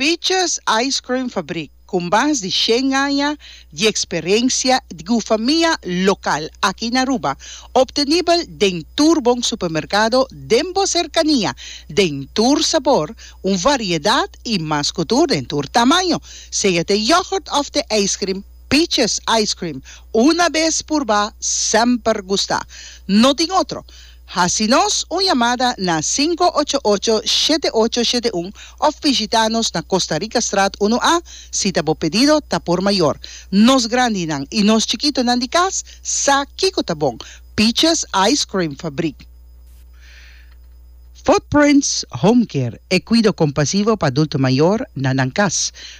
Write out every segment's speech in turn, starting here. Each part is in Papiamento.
Peaches Ice Cream Fabrik, ku mas di shen aña di eksperensia ku famia lokal aki na Aruba, optenibel den tur bon supermerkado den bo serkania, den tur sabor, un variedat i mas ku tur den tur tamaño. Sea t'e yogurt òf t'e ijskrim, Peaches Ice Cream, una bes purba, semper gusta. No tin otro. Hasi nos un yamada na sinku ocho ocho, shete ocho, shete un òf bishitá nos na Costa Rica Straat unu A si ta bo pedido ta por mayor. Nos grandinan i nos chikitonan di kas sa kiko ta bon, Peaches Ice Cream Fabrik. Footprints Home Care, e kuido kompasivo pa adulto mayor na nan kas.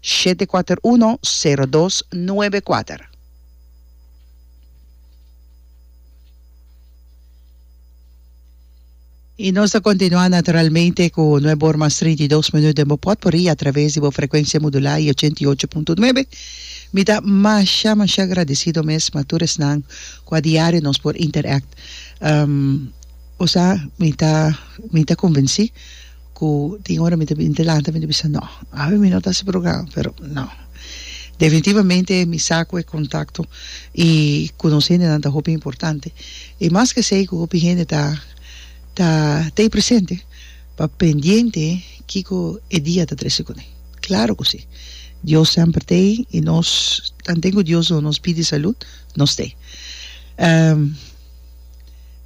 Shete kuater uno sero dos nuebe kuater. I nos ta kontinuá naturalmente ku nuebe or mas trinta i dos minut den bo pòt por i atraves di bo frekuensia modulá i ochenta i ocho punto nuebe. Mi ta masha masha agradesido mes ma tur esnan ku adiario nos por interact. Osea mi ta mi ta konvensí. ku tin ora mi ta bin delante mi ta bisa no awe mi no ta hasi programa pero no definitivamente mi sa ku e kontakto i konosé hendenan ta hopi importante i mas ke esei ku hopi hende ta ta tei presente pa pendiente kiko e dia ta trese kuné klaro ku si Dios semper tei i nos tanten ku Dios lo nos pidi salud nos tei.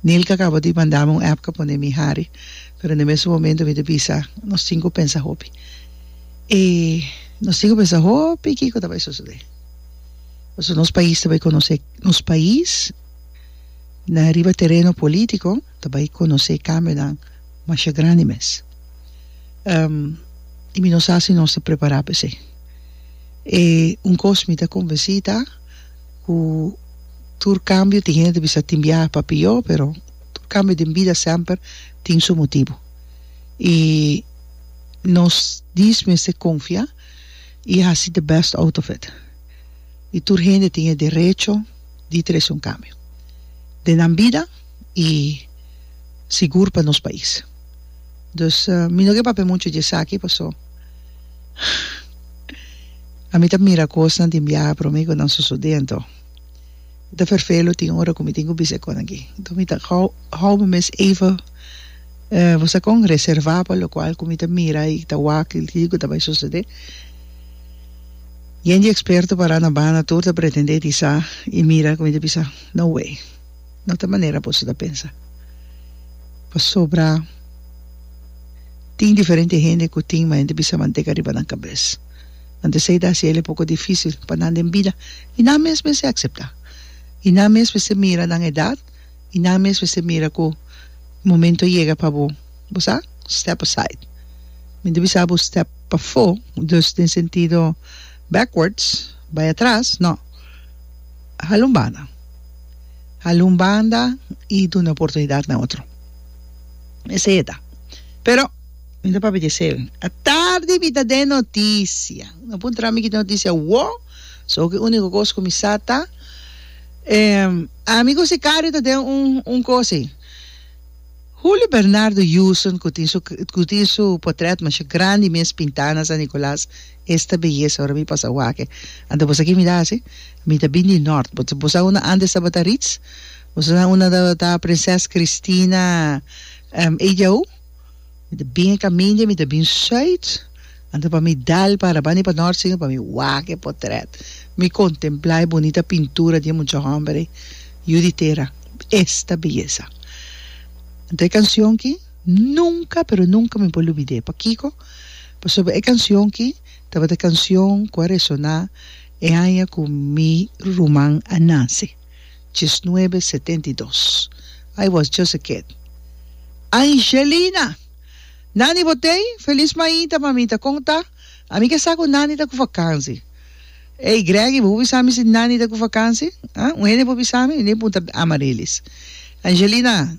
Nilka a kaba di manda mi un èpka pone mi hari, pero na e mesun momentu mi ta bisa, nos tinku pensa hopi. E nos tinku pensa hopi kiko ta bai sosodé. Pasobra nos pais ta bai konosé, nos pais na riba tereno polítiko ta bai konosé kambionan masha grandi mes. i mi no sa si nos ta prepará pa esei. E un kos mi ta konvensí ta. Ku tur kambio tin hende ta bisa tin biaha pa pió pero tur kambio den bida semper tin su motibu i nos dies mester konfia i hasi de best out of it i tur hende tin e derecho di trese un kambio den nan bida i sigur pa nos pais dus mi no ke papia muchu di esaki paso. A mi ta mira kosnan den biaha promé ku nan sosodé anto mi ta ferfelo tin ora ku mi tin ku bisa e kosnan aki anto mi ta hou hou mi mes even bo sa kon reservá pa lokual ku mi ta mira i ta wak kil tin ku ta bai sosodé yen di eksperto pará na banda tur ta pretendé di sa i mira ku mi ta bisa no way. no ta manera boso ta pensa pasobra tin diferente hende ku tin manera di bisa manteka riba nan kabes anto esei ta hasi el e poko difisil pa nan den bida i nan mes mester akseptá i nan mes mester mira nan edat i nan mes mester mira ku momento a yega pa bo bo sa step aside mi ta bisa bo step pafó dus den sentido backwards bai atras no hala un banda. Hala un banda y duna oportunidad na otro. Esey e ta. Pero, mi ta papia di esey. A tardi mi ta den noticia. No por entra mi ki den noticia awo. So ki unico cos cu mi sa ta, ehm, ami cu sicario ta den un, un cos ey. Julio Bernardo Heuson cu tin su, cu tin su potret masha grandi mes pinta na San Nicolas, Esta beyesa ora mi pasa wake. Ante boso a ki mira asi? Mi ta bin di nort. Boso sa unda antes tabata Ritz? Boso sa unda tabata Prinses Christina Ejaú? Mi ta bin e kaminda, mi ta bin Zuid. Ante pa mi dal para banda pa nort siño pa mi wak e potret. Mi kontemplá e bunita pintura di e mucha hòmber ei. Yu di tera, esta beyesa. Ante e kansion ki, nunka pero nunka mi por lubid'é. Pakiko? Pasobra e canción ki tabata canción cu a resoná e aña cu mi ruman a nace, diesnuebe setenta i dos. I was just a kid. Angelina! Nani bo t'ei? Feliz mainta, mamita. Con ta? A mi ke sa cu Nani ta cu vakansi. Ey, Greggy, bo por bisa mi si Nani ta cu vakansi? Ah? Un hende por bisa mi? Mi n'ei puntra Amaryllis. Angelina!